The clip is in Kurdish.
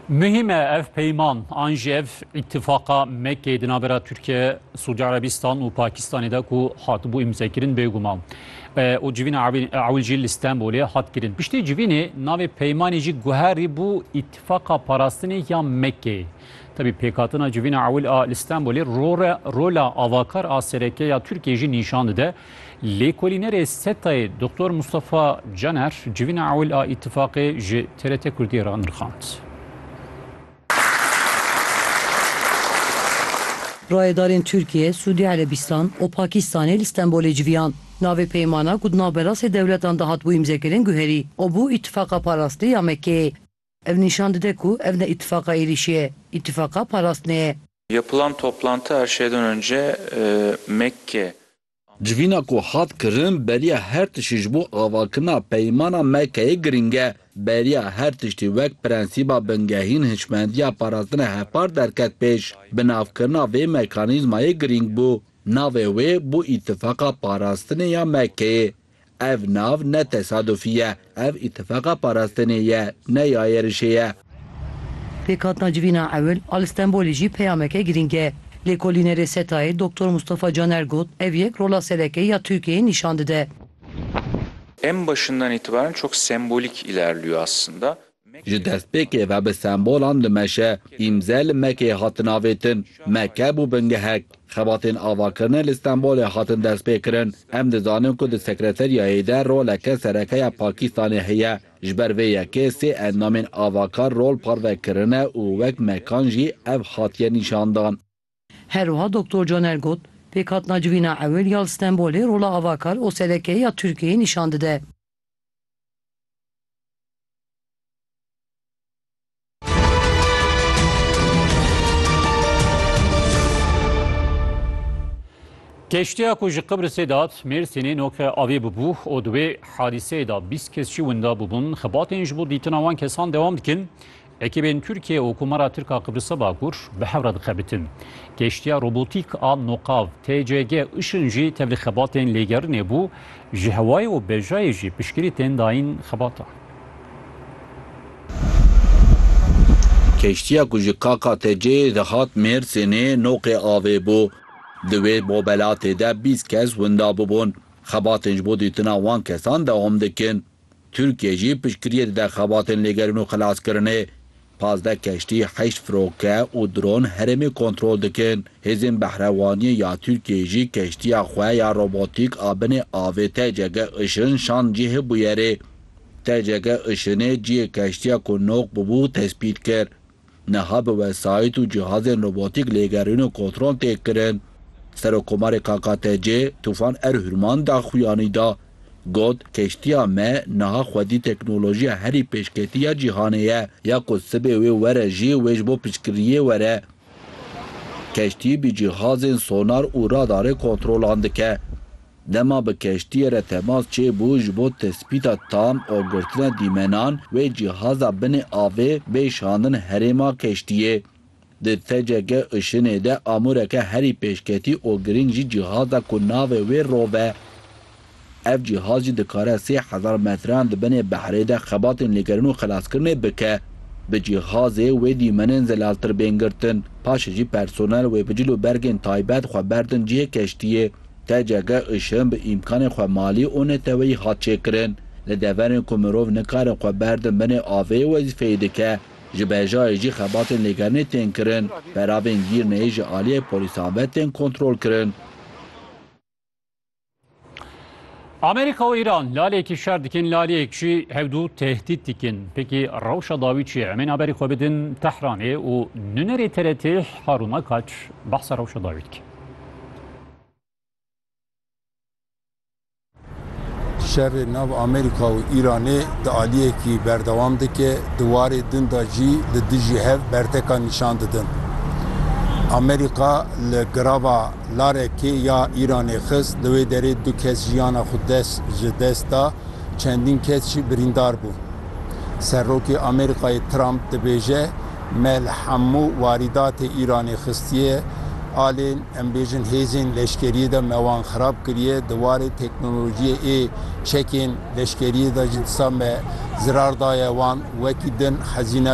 Muhîm e ev peyman an jî ev îtîfaqa Mekkeyê di navbera Tirkiye, Sûdî Erebistan û Pakistanê de ku hatibû îmzekirin bêguman û civîna ewil jî li Stenbolê hat kirin. Piştî civînê navê peymanê jî guherî bû îtîfaqa parastinê ya Mekkeyê. Tebî pêkhatina civîna ewil a li Stenbolê rola avakar a sereke ya Tirkiyê jî nîşan dide. Lêkolînerê SETA'yê Doktor Mustafa Caner civîna ewil a Îtîfaqê ji TRT Kurdiyê re nirxand. Rayedarên Tirkiye, Sûdî Erebîstan û Pakîstanê li Stenbolê civiyan. Navê peymana ku di navbera sê dewletan de hatibû îmzekirin guherî û bû Îtîfaqa Parastinê ya Mekkeyê. Ev nîşan dide ku ev ne îtîfaqa êrîşê ye, îtîfaqa parastinê ye. Yapılan toplantı her şeyden önce Mekke Civîna ku hat kirin, beriya her tiştî ji bo avakirina Peymana Mekkeyê girîng e. Beriya her tiştî wek prensîba bingehîn hincmendiya parastina hevpar derket pêş. Binavkirina vê mekanîzmayê girîng bû. Navê wê bû Îtîfaqa Parastinê ya Mekkeyê. Ev nav ne tesadufî ye. Ev îtîfaqa parastinê ye, ne ya êrişê ye. Pêkhatina civîna ewil a li Stenbolê jî peyameke girîng e. Lêkolînerê SETA'yê Doktor Mustafa Caner got, Ev yek rola serekê ya Tirkiyeyê nîşan dide. En başından itibaren çok sembolik ilerliyor aslında. Ji destpêkê ve bi sembolan li meşe, îmze li mekê hatin avêtin. Meke bû bingehek. Xebatên avakirine li Stenbolê hatin destpêkirin. Em dizanin ku di sekreteriyayê de roleke serekeya Pakîstanê heye. Ji ber vê yekê sê endamên avakar rol parve kirine û wek mekan jî ev hatiye nîşandan. Her wiha Doktor Caner got, Pêkhatina civîna ewil ya li Stenbolê rola avakar û serekeyê ya Tirkiyeyê nîşan dide. Keştiya ku ji Qibrisê dat Mêrsînê noke avê bûbû û di wê hadîseyê de bîst kes jî winda bûbûn. Xebatên ji bo dîtina wan kesan dewam dikin. Ekîbên Tirkiyê û Komara Tirk a Qibrisa Bakur bi hev re dixebitin. Geştiya robotîk a NOKAV, TCG IŞIN jî tevlî xebatên lêgerinê bû, ji hewayê û bejayê jî piştgirî tên dayîn xebatan. Keştiya ku ji KKTC'ê dihat Mêrsînê noqê avê bû. Di wê bobelatê de bîst kes winda bûbûn. Xebatên ji bo dîtina wan kesan dewam dikin. Tirkiye jî piştgiriyê dide xebatên lêgerîn û xelaskirinê. Pazdeh keştî, heşt firoke û dron herêmê kontrol dikin. Hêzên behrewaniyê ya Tirkiyeyê jî keştiya xwe ya robotîk a binê avê TCG Işin şand cihê bûyerê. TCG Işinê cihê keştiya ku noq bûbû tespît kir. Niha bi wesayît û cihazên robotîk lêgerîn û kontrol tê kirin. Serokkomarê KKTC'ê Tûfan Erhûrman daxuyanî da, got, Keştiya me niha xwedî teknolojiya herî pêşketî ya cîhanê ye, ya ku sibê wê were jî wê ji bo piştgiriyê were. Keştî bi cihazên sonar û radarê kontrolan dike. Dema bi keştiyê re temas çêbû ji bo tespîta tam û girtina dîmenan wê cîhaza binê avê bê şandin herêma keştiyê. Di TCG Işinê de amûreke herî pêşketî û girîng jî cîhaza ku navê wê rov e. Ev cîhaz jî dikare sê hezar metreyan di binê behrê de xebatên lêgerin û xilaskirinê bike. Bi cîhazê wê dîmenên zelaltir bên girtin. Paşê jî personel wê bi cil û bergên taybet xwe berdin cihê keştiyê. TCG IŞIN bi îmkanên xwe malî û neteweyî hat çêkirin. Li deverên ku mirov nikare xwe berdin binê avê wezîfeyê dike, ji bejayê jî xebatên lêgerinê tên kirin. Peravên Gîrneyê ji aliyê polîsan ve tên kontrolkirin. Amerîka û Îran lalekî şer dikin, laliyek jî hevdu tehdît dikin. Pêkî rewşa dawî çi ye? Em ê naberî xwe bidin Tehranê û nûnerê TRT'ê Harûn Akaç behsa rewşa dawî dike. Şerê nav Amerîka û Îranê di aliyekî berdewam dike, di warê din de jî li dijî hev bertekan nîşan didin. Amerîka li girava larekê ya Îranê xist, li wê derê du kes jiyana xwe dest ji dest da, çendîn kes jî birîndar bûn. Serokê Amerîkayê Trump dibêje, Me li hemû warîdatê Îranê xistiye alê, em bêjin hêzên leşkeriyê de me wan xirab kiriye, di warê teknolojiyê ê çekên leşkeriyê de jî disa me zirar daye wan, wekî din hezîna